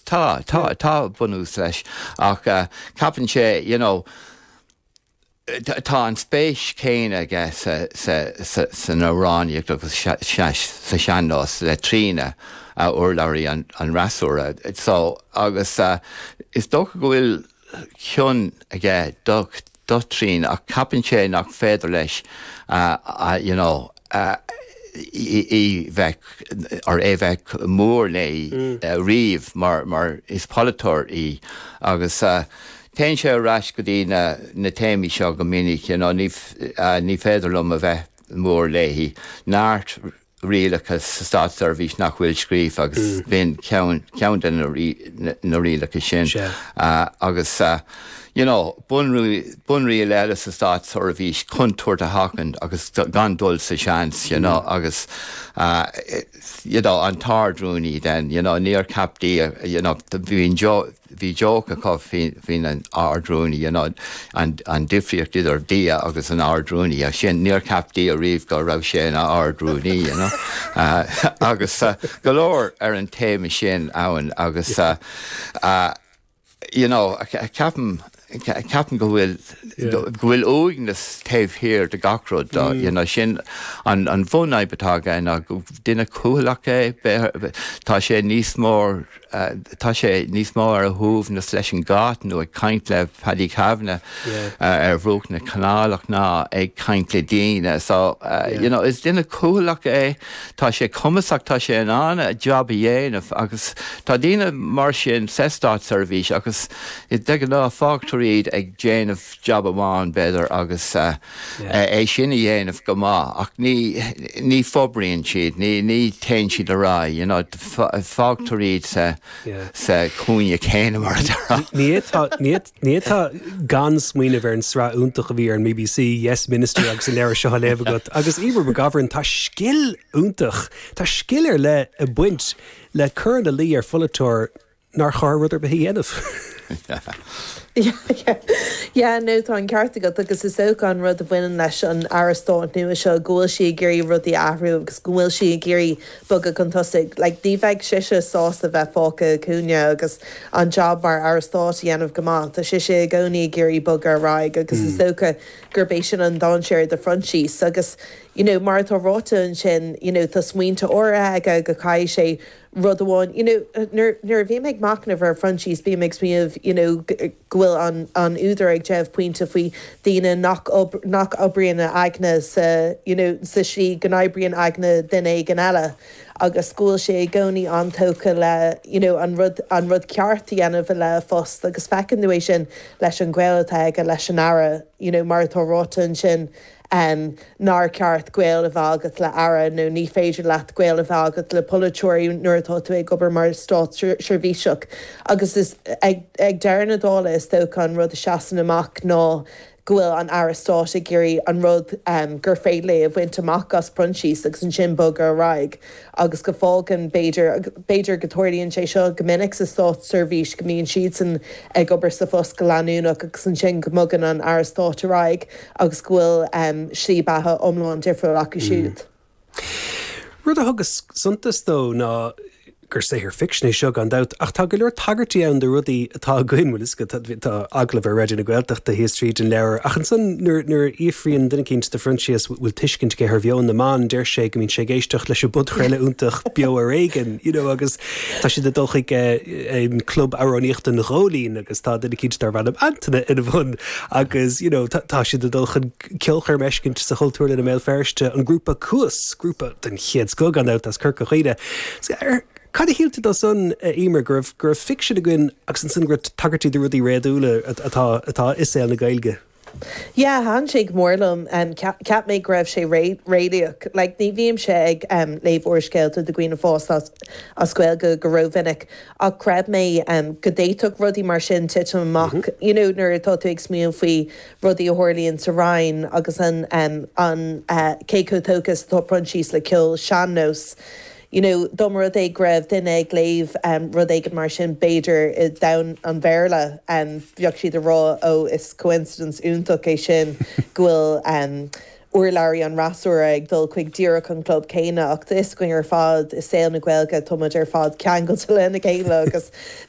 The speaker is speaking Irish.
Tá, tá, tá bunús leis ach ceapann sé, you know, tá an spéis chéanna aige san amhránaíocht agus sa sean-nós le Tríona, urlabhraí an fhreasúra. So, agus is dócha go bhfuil cion aige do Thríona ach ceapann sé nach féidir leis you know í bheith or é bheith mór léi riamh mar mar is polaiteoir í agus téann sé ar ais go dtí na téamaí seo go minic you know ní féidir liom a bheith mór léi, tá neart. rialacha sa státseirbhís nach bhfuil scríofa agus b'in ceann de na rialacha sin. Agus, you know, bunriail eile sa státseirbhís contúirt a sheachaint agus gan dul sa seans, you know, agus, you know, an tArd-Rúnaí then, you know, níor cheap Dia, you know, bhí an joke, Bhí joke acu faoin an Ard-Rúnaí, you know, an an difríocht idir Dia agus an Ard-Rúnaí, ach sin, níor cheap Dia riamh go raibh sé ina Ard-Rúnaí, you know. Agus go leor ar an téama sin ann agus, you know, ceapaim, Ceapaim go bhfuil, go bhfuil uaigneas taobh thiar de gach rud dó, you know, sin an bhunfhadhb atá aige ná gur duine cúthalach é, tá sé níos mór, tá sé níos mó ar a shuaimhneas leis an gcat nó ag caint le Paddy Kavanagh ar bhruach na canálach ná ag caint le daoine so, you know, is duine cúthalach é. Tá sé cumasach, tá sé in ann a jab a dhéanamh agus tá daoine mar sin sa státseirbhís agus de ghnáth fágtar iad ag déanamh jab amháin b'fhéidir agus é sin a dhéanamh go maith ach ní fhorbraíonn siad, ní téann siad ar aghaidh, you know, fágtar iad sa chúinne céanna mar a deir. Ní fhéadfá gan smaoineamh ar an sraith iontach a bhí ar an BBC, Yes Minister agus an leabhar seo á léamh agat. Agus Emer McGovern, tá scil iontach, tá scil ar leith ag baint le cur ina luí ar pholaiteoir nár chóir rud ar bith a dhéanamh. Yeah, nó tá an ceart agat agus is dócha an rud a bhaineann leis an Aire Stáit nua seo go bhfuil sí ag iarraidh rudaí a athrú agus go bhfuil sí ag iarraidh bogadh chun tosaigh. Like, ní bheadh sise sásta bheith fágtha sa chúinne agus an jab mar Aire Stáit a dhéanamh go maith. Tá sise i gcónaí ag iarraidh bogadh ar aghaidh agus is dócha gurb é sin an dainséar do Phroinsias. Agus, you know, mar atá ráite ansin, you know, tá smaointe áirithe aige go gcaithfidh sé rud amháin, you know, nuair a bhím ag machnamh ar Phroinsias bím ag smaoineamh, you know, go bhfuil an údar ag déanamh pointe faoi daoine nach oibríonn a aigne sa you know sa slí go n-oibríonn aigne duine éigin eile agus go bhfuil sé i gcónaí an-tógtha le you know an rud an rud ceart a dhéanamh le a phost agus feiceann tú é sin leis an gaol atá aige leis an Aire you know mar atá ráite ansin. em nár ceart gaol a bheith agat le Aire nó ní féidir leat gaol a bheith agat le polaiteoirí nuair atá tú ag obair mar státseirbhíseach agus ag ag deireadh na dála is dócha an rud a seasann amach ná go bhfuil an Aire Stáit ag iarraidh an rud em gur féidir léi a bhaint amach as Proinsias agus ansin bogadh ar aghaidh. agus go fágann, b'fhéidir, b'fhéidir go dtarlaíonn sé seo go minic sa státseirbhís, go mbíonn siadsan ag obair sa phost go leanúnach agus ansin go mbogann an Aire Stáit ar aghaidh agus go bhfuil slí beatha iomlán difriúil acu siúd. Rud a thugas suntas dó ná gur saothar ficsin é seo gan dabht ach tá go leor tagairtí ann do rudaí atá againn, bhuel is, tá agallamh ar Raidió na Gaeltachta síos tríd an leabhar. Ach ansan nuair, nuair a fhiafraíonn duine eicínt de Phroinsias bhfuil tuiscint aige ar mheon na mban, deir sé go mbíonn sé ag éisteacht leis an bpodchraoladh iontach Beo Ar Éigean, you know, agus tá siad ag dul chuig eh, club amhránaíochta an Ghóilín agus tá duine eicínt darb ainm Antaine ina bhun agus you know, tá, tá siad ag dul chun ceolchoirm eicínt sa Chultúrlann i mBéal Feirste, an grúpa Cuas, grúpa den chéad scoth gan dabht as Corca Dhuibhne. So, ar, Cad a shíl tú de san, a Emer, go raibh go raibh ficsean againn agus ansan go raibh tagairtí do rudaí réadúla atá atá i saol na Gaeilge? Yeah, thaitin sé go mór liom. Cheap cheap mé go raibh sé réalaíoch. Like, ní bhímse ag léamh úrscéalta do dhaoine fásta as as Gaeilge go rómhinic ach chreid mé go d'fhéadfadh rudaí mar sin titim amach, you know, nuair atá tú ag smaoineamh faoi rudaí a tharlaíonn sa Roinn agus an an cé chomh tógtha is atá Proinsias le ceol sean-nóis. You know, dá mba rud é go raibh duine ag léamh rud éigin mar sin, b'fhéidir i ndomhan an Bhéarla, bheadh siad ag rá, Ó, is coincidence iontach é sin go bhfuil urlabhraí an fhreasúra ag dul chuig díreach an chlub céanna. Ach tá a fhios againn ar fad, i saol na Gaeilge, tá muid ar fad ceangailte lena chéile agus